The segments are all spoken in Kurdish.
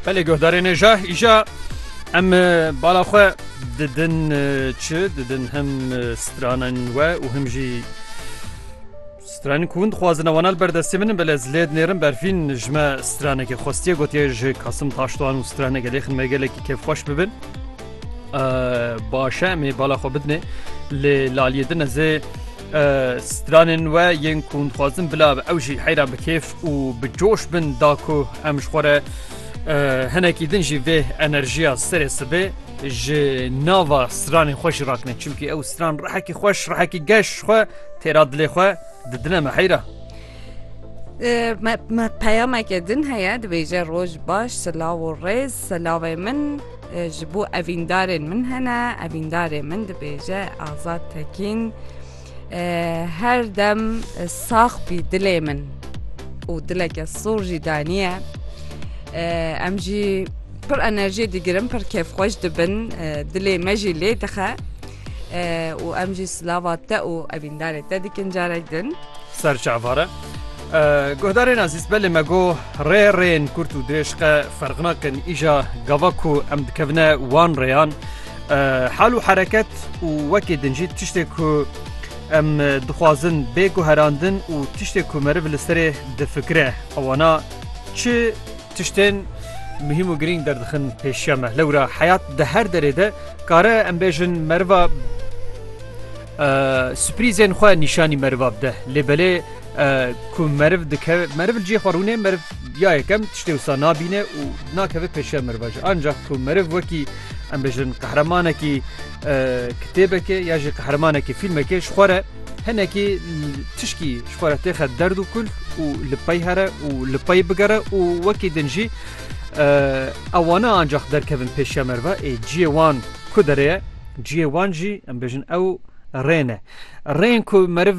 Belê guhdarê nêja îja em bala xwe didin çi didin him stranin we û him jî stranin ku hûn dixwazin ewanal berdestê min belê ez lê dinêrin berfîn ji me stranekê xwestiye gotiye ji kasim taştoan û strane gelê xin me gelekî kevxweş bibin başe em ê bala xwe bidinê lê laliyê din ez ê Stranên we yên ku dixwazin bila ew jî heyra bi kêf û bi coş bin da ku em ji xwe re hinekî din jî vê enerjiya serê sibê ji nava stranên xwe jî rakine çimkî ew stran rehekî xweş rehekî geş xwe têra dilê xwe di dine me heyra. me peyameke din heye dibêje roj baş silav û rêz silavê min Ji bo evîndarên min hene, evîndarê min dibêje Azad Tekîn her dem sax bî dilê min û dileke sor jî daniye. Em jî pir enerjiyê digirin pir kêfxweş dibin dilê me jî lê dixe û em jî silava te û evîndarê te dikin carek din. Serçavare Guhdarên ezîz belê me got, rê rêyên kurt û dirêj qe ferq nakin, îja gava ku em dikevine wan rêyan hal û hereket û wekî din jî tiştê ku em dixwazin bê guherandin û tiştê ku meriv li serê difikire wana çi tiştên muhîm û girîng derdixin pêşiya me. Lewra heyat di her derê de kare em bêjin meriva Sürprîzên xwe nîşanî meriva bide. Lê belê ku meriv dikeve meriv li cihê xwe rûnê meriv ya yekem tiştê wisa nabîne û nakeve pêşiya meriva jî. Ancak ku meriv wekî em bijin qehremanekî kitêbekê ya jî qehremanekî fîlmekê ji xwe re hinekî tişkî ji xwe re têxe derd û kul û li pey here û li pey bigere û wekî din jî ew wane ancak derkevin pêşiya meriva ê cihê wan ku derê ye Cihê wan jî em bêjin ew rê ne. Rên ku meriv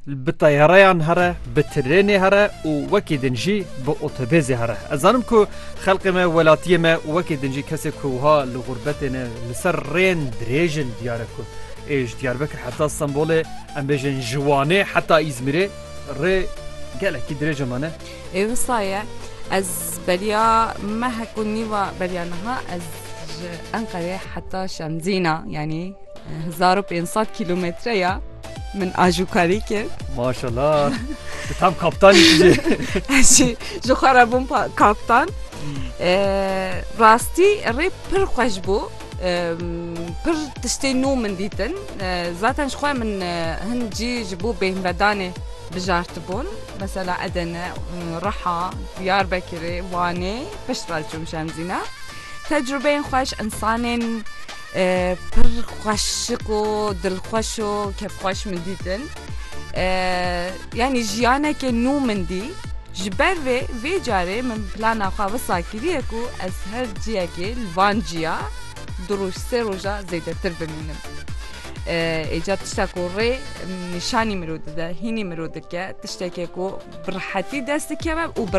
bi teyareyan here, bi trênê here û wekî din jî bi otobêzê here. Ez zanim ku xelkê me, welatiyê me û wekî din jî kesê ku wiha li gurbetê ne li ser rên dirêj in diyar e ku ê ji Diyarbekir heta Stenbolê em bêjin ji Wanê heta Îzmîrê rê gelekî dirêj e me ne. Ê wisa ye ez beriya me heko nîva beriya niha ez ji Enqerê heta Şemzîna yanî hezar û pênc sed kîlometre ya min ajokarî kir. Maşala Tu tam kaptanî tu jî. Ez jî ji xwe re bûm pa- kaptan. Ee, rastî rê pir xweş bû. Ee, pir tiştên nû min dîtin. Ee, zaten ji xwe min e, hin cî ji bo bêhnvedanê Bijartibûn, mesela Edene, Riha, Diyarbekirê, Wanê piştre çûm Şemzîne. Tecrûbeyên xweş, însanên pir xweşik û dilxweş û kefxweş min dîtin. Yanî jiyanekê nû min dî. Ji ber vê vê carê min plana xwe wisa kiriye ku ez her ciyekê li van ciya du roj sê roja zêdetir bimînim. ê ca tişta ku rê nîşanî mirov dide hînî mirov dike tiştekê ku bi rehetî dest dikeve û bi